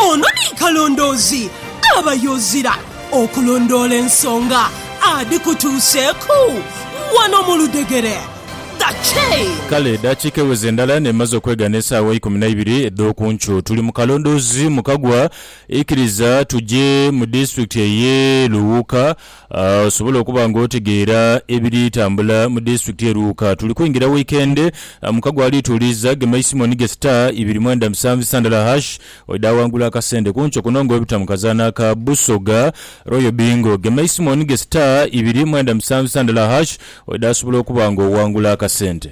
Ono ni kalondoozi aba y'ozira okulondoola ensonga adhikutuuseeku wano mu ludhegere. The Chain. Kale edaakiika eweze ndala n'emaze okwegana esaawa ikumi na ibiri edh'oku nkyo. Tuli mu kalondoozi mu kagwa. Ikiriza tuje mu disitulikiti ey'e Luwuuka Osobola okuba nga otegeera ebiri tambula mu disitulikiti ye Luuka. Tuli kwingira wiikendi, mukago ali tuuliiza gema eisimu onige star ibiri mwenda musanvu isa ndala hash oidha awangula akasente. Ku nkyo kuno nga obita mu kazaanho aka Busoga Royal Bingo, gema eisimu onige star ibiri mwenda musanvu isa ndala hash oidha asobola okuba nga owangula akasente.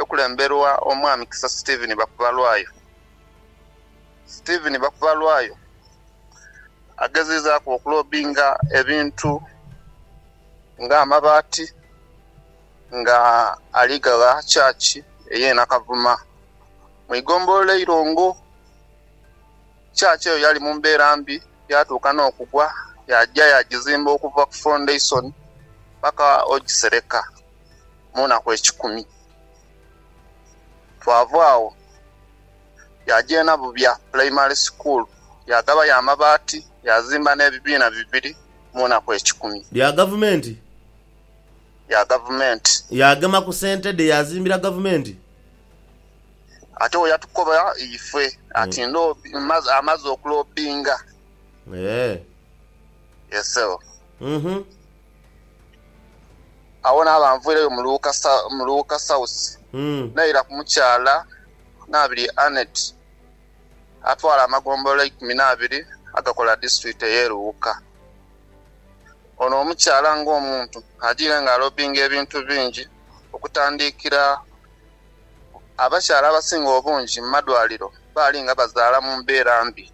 ekulemberwa Omwami Kisa Stephen Bakubalwayo. Stephen Bakubalwayo agezizaaku okulobinga ebintu nga amabaati nga ali gagha church eye Nakavuma mu igombolola Eirongo. Church eyo yali mu mbeera mbi yatuuka n'okugwa yaja yagizimba okuva ku foundation paka ogisereka. mu naku ekikumi. Twava agho yaaja e Nabubya Pulayimale Sukuulu, yaagabayo amabaati, yaazimba n'ebibiina bibiri mu naku ekikumi. Bya Gavumenti. Bya Gavumenti. Yaagema ku sente dhe yaazimbira Gavumenti. Ate wo yatukoba ife ati amaze okulobbinga. Eeh. Yes ssebo. Uhmm. Agho naaba nviireyo mu Luuka South naira ku mukyala Nabirye Annet atwala amagombolola eikumi n'abiri agakola disitulikiti ey'e Luuka. Ono omukyala ng'omuntu ajiire nga alobbinga ebintu bingi okutandiikira abakyala abasinga obungi mu madwaliro baali nga bazaala mu mbeera mbi.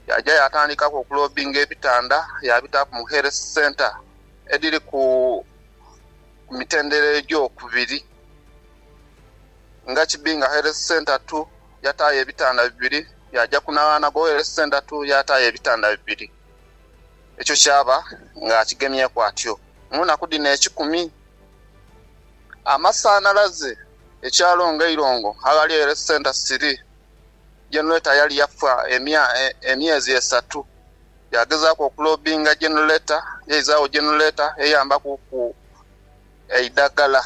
Yaja yaatandikaku okuloobinga ebitanda yaabitaaku mu Health Centre edhiri ku mitendera egyokubiri. Nga Kibinga Health Centre tu, yataayo ebitanda bibiri, yaaja ku Naghanagho Health Centre tu yaataayo ebitanda bibiri. Ekyo kyaba ng'akigemyeku atyo. Mu naku dhino ekikumi, amasanhalaze ekyalo nga Eirongo aghali Health Centre siri. Generator yali yafa emyezi esatu. Yagezaaku okulobinga generator, yaizaagho generator eyambakuku eidagala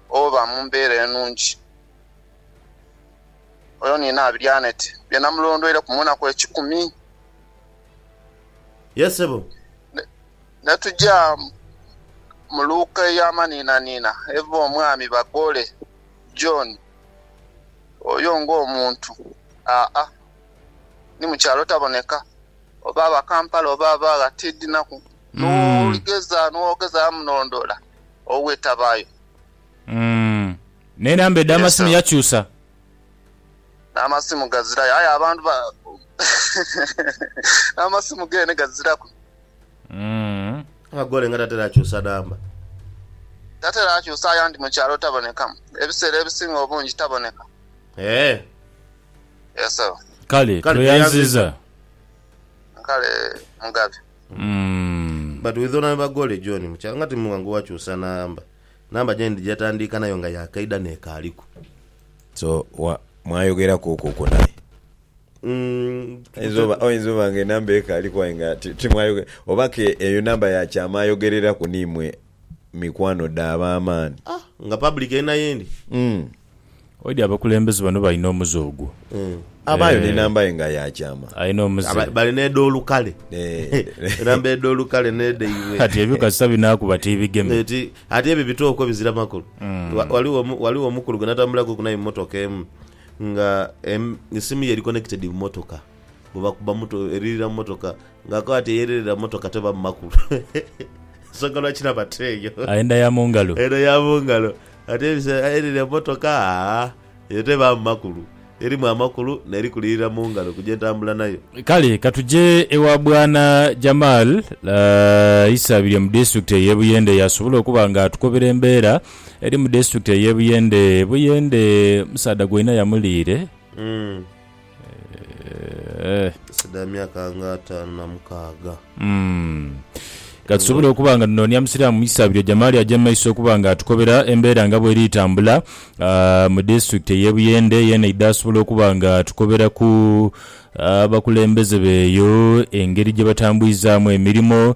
oba mu mbeera enungi. Oyo ni Naabiryo Annet bye namulondweireku mu naku ekikumi. Yes sebo. Netuja mu luuka ey'amanhinanhina eva omwami Bagole. John oyo ng'omuntu, aa, ni mu kyalo taboneka, oba aba Kampala oba aba gha, tiidhinaku. N'oligeza, n'ogezaagho munondoola, owe tabaayo. Mm. N'enamba edh'amasimu yakyusa. N'amasimu gazirayo. Aye abantu ba, n'amasimu geene gaziraku. Akagole nga tatera kyusa namba. Tatera kyusa ayandi mu kyalo taboneka. Ebiseera ebisinga obungi taboneka. Eeh. Yes ssebo. Kale Kale tweyanziza. tweyanziza. Kale Mugabi. But with Honourable Bagole John mu kyalo nga timwanguwa kyusa namba. Namba gye ndi gyetandiika nayo nga ya kaidha n'ekaaliku. So wa mwayogeraku okwo kwo naye? Oyinza oba nga enamba ekaaliku aye nga timwayogera. Oba ke eyo namba ya kyama ayogereraku ni mwe mikwano dhe ab'amaani. Ah! Nga public eri na yendi. Umm. Oidhi abakulembeze bano balina omuze ogwo. Abaayo ni namba ye nga ya kyama. Alina omuze. Bali n'edh'olukale. Enamba edh'olukale n'edhaibwe. Kati ebyo kasita binaakuba tibigeme. Ati ebyo bitooko bizira makulu. Ghaligho omukulu gwe natambulaku ku naye mu motoka emu. Nga esimu ye eri connected mu motoka bwebakuba muto eririra mu motoka nga akoba ati eyererera mu motoka teba mu makulu ensonga lwaki naba teeyo. Enda ya mu ngalo. Enda ya mu ngalo ate ebiseera eyererera mu motoka aa eyo tebaamu makulu erimu amakulu neri kulirira mu ngalo ku gyentambula nayo. Kale katuje ewa Bwana Jamal Isabirye mu disitulikiti ey'e Buyende y'asobola okuba nga atukobera embeera eri mu disiturikiti ey'e Buyende. Buyende omusaadha gwe inha yamuliire. Eseda ya myaka nga ataanu na mukaaga. Ka tusobole okuba nga tunoonia Musiraamu mu isaabiro Jamali aje mu maiso okuba nga atukobera embeera nga bw'eri tambula mu disiturikiti ey'e Buyende. Yeena aidha asobola okuba nga atukoberaku abakulembeze b'eyo engeri gye batambwizaamu emirimo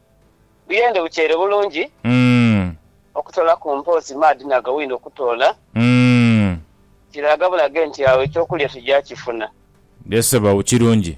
Buyende bukyere bulungi okutoolaku mpoozi maadhi na gawino okutoola kiraga bulage nti agho eky'okulya tuja kifuna. Ye Sebaghu kirungi